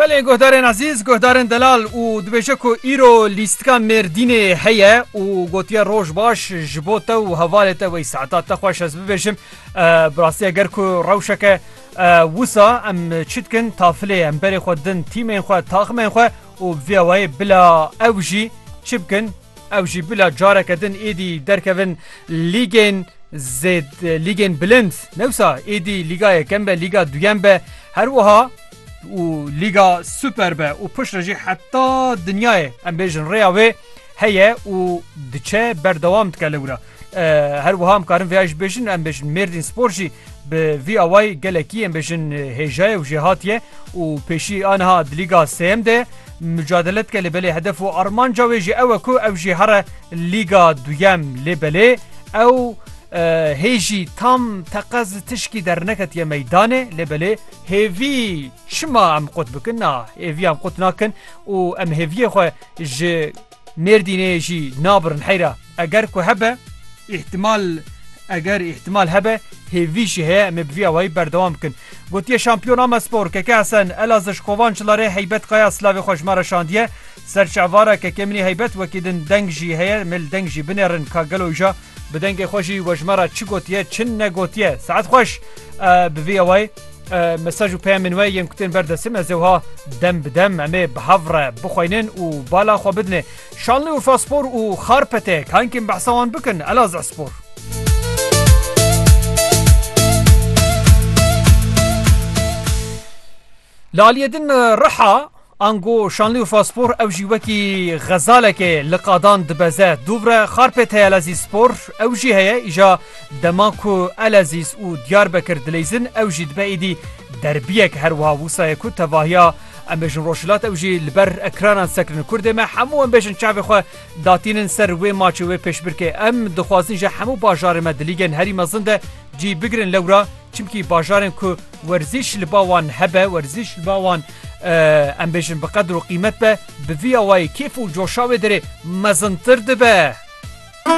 Belê guhdarên ezîz, guhdarên delal û dibêje ku îro lîstika Mêrdînê heye û gotiye roj baş ji bo te û hevalê te wey saeta te xweş ez bibêjim bi rastî eger ku rewşeke wisa em çi dikin tafilê em berê xwe din tîmên xwe taximên xwe û bi vî awayê bila ew jî çi bikin Ew jî bila careke din êdî derkevin lîgên zêd lîgên bilind newsa êdî lîga yekem be lîga duyem be her wiha û lîga super be û pişt re jî heta dinyayê em bêjin rêya wê heye û diçe berdewam dike li wira. Her wiha em karin vêya jî bêjin em bêjin mêrdîn spor jî bi vî awayî gelekî em bêjin hêjaye û jêhatiye û pêşî aniha di lîga sêyem de mücadele dike lê belê hedef û armanca wê jî ew e ku ew jî here lîga duyem lê belê ew hêjî tam teqez tişkî derneketiye meydanê lê belê hêvî çima em qut bikin na hêvî em qut nakin û em hêviyê xwe ji Mêrdînê jî nabirin heyra eger ku hebe. Îhtimal eger îhtimal hebe hêvî jî heye em ê bi vî awayî berdewam bikin. Gotiye Şampiyon Ama Spor, Keke Hesen, Elazij, Kovan, Çilarê, Heybet Kaya silavê xwe ji me re şandiye. Ser çavara Keke Min ê Heybet wekî din deng jî heye, em ê li deng jî binêrin ka gelo îja. Bi dengê xwe jî we ji me re çi gotiye çi negotiye. Saet xweş bi vî awayî mesaj û peyamên we yên kutên ber destim ez ewha dem bi dem em ê bi hev re bixweynin û bala xwe bidinê. Şanlî Urfa Spor û Xarpete kankên behsa wan bikin Elazığ Spor. Li aliyê din riha, ango şanlî û faspor ew jî wekî xezalekê li qadan dibeze. Dûvre xarpê Teyelezîz Spor ew jî heye, îja dema ku Elezîz û Diyarbekir dileyzin ew jî dibe êdî derbiyek her wiha wisa ye ku tevahiya em bêjin rojhilat ew jî li ber ekranan sekirin. Kurdê me hemû em bêjin çavê xwe datînin ser wê maçê wê pêşbirkê. Em dixwazin ji hemû bajarên me di lîgên herî mezin de cî bigirin lewra Çimkî bajarên ku werzîş li ba wan hebe, werzîş li ba wan em bêjin bi qedir û qîmet be, bi vî awayî kêf û coşa wê derê mezintir dibe.